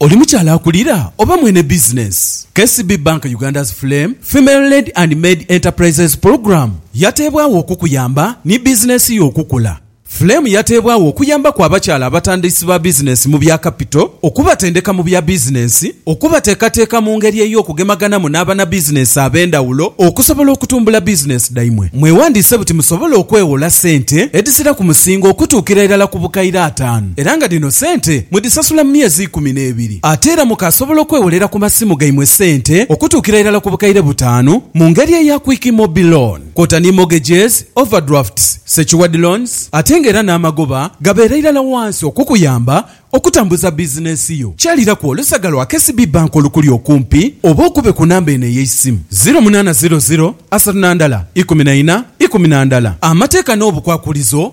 Oli mukyala akulira oba mwene bizinensi? KCB Bank Uganda's Flame Female Led and Maid Enterprises Program yateebwagho okukuyamba ni bizinensi yo okukula. Flame yateebwagho okuyambaku abakyala abatandisi ba bizinensi mu bya kapito, okubatendeka mu bya bizinensi, okubateekateeka mu ngeri ey'okugemaganamu n'abanabizinensi ab'endhawulo okusobola okutumbula bizinensi dhaimwe. Mwewandiise buti musobole okweghola sente edhizira ku musingo okutuukira irala ku bukaire ataanu. era nga dhino sente mudhisasula mu myezi ikumi n'ebiri. Ate era mukaasobola okwewolera ku masimu gaimwe sente okutuukira irala ku bukaire butaanu mu ngeri eya Quick Mobi Loan kwota ni mortgages, overdrafts, secured loans ate nga era n'amagoba gabeera irala wansi okukuyamba okutambuza bizinensi yo. Kyaliraku olusaga lwa KCB Bank olukuli okumpi oba okube ku namba eno ey'eisimu, ziro munaana ziro ziro asatu na ndala ikumi na ina ikumi na ndala. Amateeka n'obukwakulizo